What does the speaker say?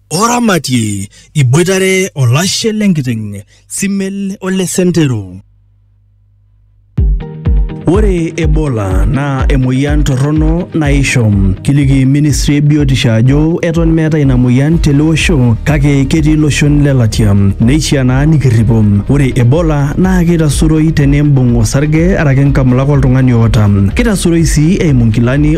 oramatie iboitare olashe lenkiteng simel ole sentero Ore Ebola naa emoyian torrono naisho. Kiliki ministry e biotisho ajo eton meeta ina moyian tele osho kake ketii iloshon le latia. Neishiaa naa nikirripo. Ore Ebola naa keitasuroi teneimbung osarge araki nkamulak oltung'ani oota. Keitasuroi sii eimu nkilani